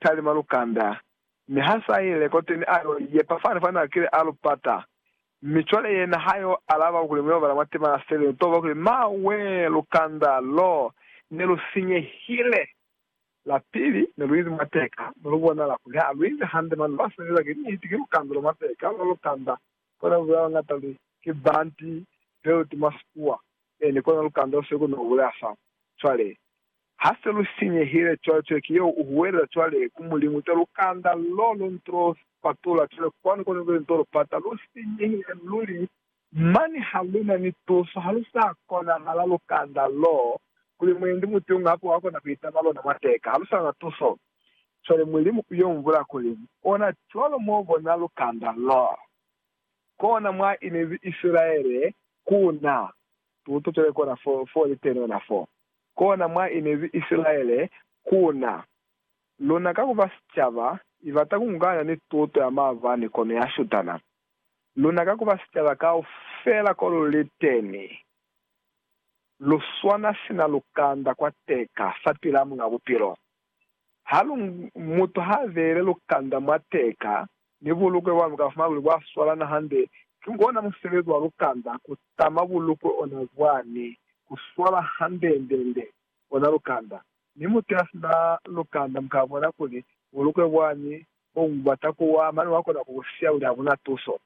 talima lukanda, mi ha sa ile koteni a yo yepa fani fa na kile a lu pata. Mi cwale yena ha yo alaba kuli mu yo bala mwa tema ya seli, lu to bwa kuli, Ma wee, lukanda lo ne lu sinyehile! La pili, ne lu ize mwa teka, mi lu bonala kuli ha lu ize hande, mane ba sebeza ki niti, ki lukanda lo mwa teka, lwa lukanda. Kona bulela ba ngata li, Ki banti, belt mwa Sikuwa. Ee, ni kona lukanda lu sili ku no bulea fa. Cwale, Ha se lu sinyehile, cwale Toleki yeo u huwelela cwale ku Mulimu cwale lukanda loo lu ntulo patula. Cwale kwanu kone lu ntulo lu pata. Lu sinyehile luli, mane ha lu na ni tuso. Ha lu sa konahala lukanda loo, kuli mwendi mutunga hape wa kona ku itama lona mwa teka. Ha lu sa na tuso. Cwale Mulimu u yo mbula kuli, Ona cwalo mo bona lukanda loo. Kona mwa inezi Isilaele ku na tuto cwale kona fo, fo li teni ona foo. kona mwa inezi Isilaele ku na. Luna ka ku ba sicaba, i bata ku ngukanya ni tuto ya maabani kono ya shutana. Luna ka ku ba sicaba kaufela ko lu li teni, lu swana sina lukanda kwa teka fapil'a Muñ'a Bupilo. Ha lu, mutu ha beile lukanda mwa teka, Mi bulukwe bwa luka fumana kuli bwa swalana hande ki ona musebezi wa lukanda ku tama bulukwe ona bwani ku swala handendende ona lukanda. Mi mutu ya sina lukanda mu ka bona kuli bulukwe bwani bo bu bata ku wa mane wa kona ku bu siya kuli ha bu na tuso.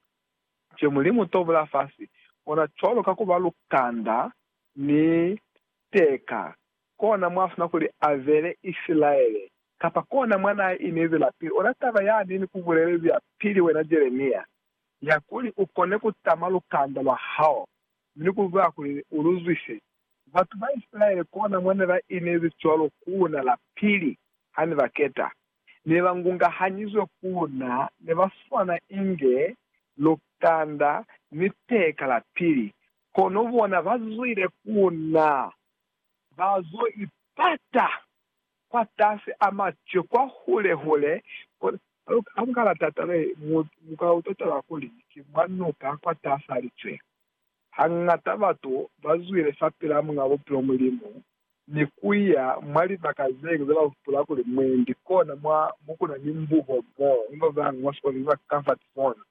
Nce Mulimu to bula fasi ona cwalo ka ku ba lukanda ni teka Kona mwa funa kuli a ve ni Isilaele, kapa kona mwa na inezi la pili. Ona taba ya ni ni ku bulelezi ya pili, wena Jeremia, ya kuli u kone ku tama lukanda lwa hao, ni ku zwa kuli u lu zwise. Batu ba Isilaele kona mwa ne ba inezi cwalo ku na la pili, ha ni ba keta. Ne ba ngungahanyizwe ku na, ne ba swana inge lukanda ni peka la pili, kono bona ba zwile ku na Ba zo ipata kwatasi a mace kwa hule hule kona. Ha mu ka la tatala ye, mu, mu ka utwa taba kuli ki mwa nuka kwatasi a licwe. Hangata batu ba zwile fapil'a Muñ'a Bupilo Mulimu ni ku ya mwa libaka zeñwi ze ba hupula kuli mwendi kona mwa mo ku na ni mbubo moo ba bañwi mwa sikolelo ba ka fa ki zona.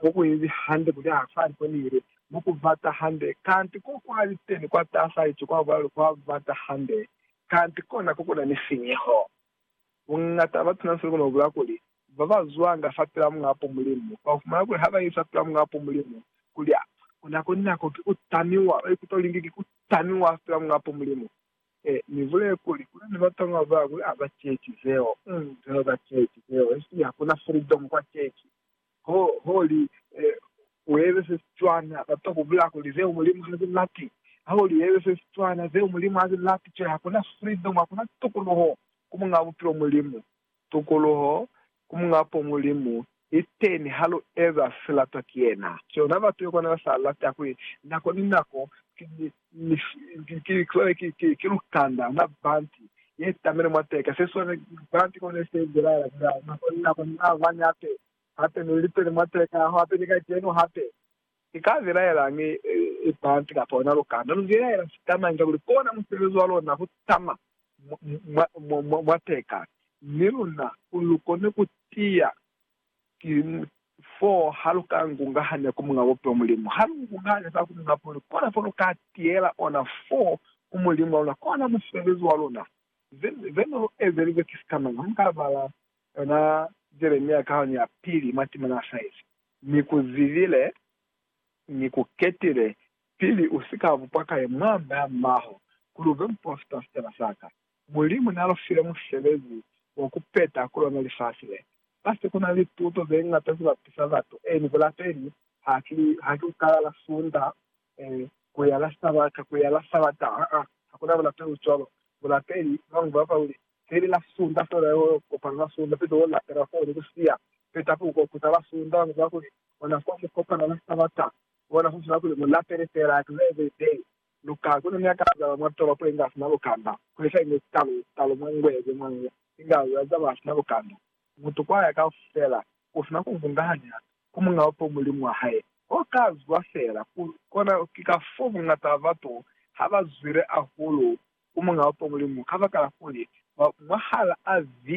Mo kuinzi hande kuli ha fa li konile, mo ku bata hande, kanti ko kwa liteni kwa tasa ico kwa bulalu kwa bata hande, kanti kona ko kuna ni sinyeho. Bungata ba batuna seli kono bula kuli, ba ba zwanga fa pila Muapo Mulimu, ba fumana kuli ha ba iza pila Muapo Mulimu, kuli, Kuna ku nako ki ku tamiwa, ba ikuta kuli nge ki ku tamiwa fela Muapo Mulimu. Ee, ni bulele kuli, kuna ni batanga babañwi a ba ceeci zeo, um, zeo ba ceeci zeo, esiñi hakuna freedom kwa ceeci. Ho, ho li, ee, uebe se si cwana, batwa ku bulaya kuli, Zeo Mulimu ha zi lati. Ho li, uebe se si cwana, Zeo Mulimu ha zi lati. Cwale hakuna freedom, hakuna tukuluho ku Muñ'a Bupilo, Mulimu. Tukuluho ku Muñ'a po Mulimu liteni ha lu eza se latwa ki yena. Ki ona batu yo kona ba sa lata kuli nako ni nako ki lukanda na banti ye tamile mwa teka se swane banti ko ne se bulaela bulaela nako ni nako ni maabani hape hape ni liteni mwa teka aho hape ni kacenu hape. Ni ka bilaelañi banti kapa ona lukanda? Lu bilaela sitamañi kakuli kona musebezi wa lona ku tama mwa, mwa, mwa, mwa teka, mi luna lu kone ku tiya ki foo ha lu ka ngungahanya ku Muñ'a Bupilo Mulimu. Ha lu ngungahanya za ku Muñ'a Bupilo, kona fo lu ka tiyela ona foo ku Mulimu wa luna, kona mufeelezi wa luna. Ze, ze ne lu ezelize ki sikamañi? Ha muka bala yona Jeremia kahanu ya pili, mwa timana a sa ize, Ni ku zibile, Ni ku ketile, Pili u si ka bupa ka ye mwa mea mbaho kuli u be mupolofita sicaba sa ka, Mulimu n'a lu file musebezi wa ku peta ku lona lifasi le. Mwa se ku na ni tuto ze ñata ze bapisa batu, ee, ni bulapeli, haki, haki ku kala la Sunda, ee, ku ya la Sabata, ku ya la Sabata, aa, ha ku na bulapeli bo cwalo. Bulapeli, ba bañwi ba lupela kuli, se li la Sunda fela, yo kopana la Sunda, pito wo lapela foo ni ku siya, petapi u ko kuta la Sunda. Ba bañwi ba lupela kuli, ona fa mu kopana la Sabata, Kona ku ziba kuli mu lapele fela klebe ze luka kono ni akaza ba mwa tolopo ye nga sina lukanda, kuli sa inge sitalo, sitalo mwa ngwe ze mwa ngwe, inga za za ba sina lukanda. Mutu kwa ya kaufela, u sina ku vungahanya ku muñawe fo mulimu wa hae. Ho ka zwa fela ku kona ki kafoo bungata ba batu ha ba zwile ahulu ku muñawe fo mulimu, kabakala kuli, mwa, mwahal'a ze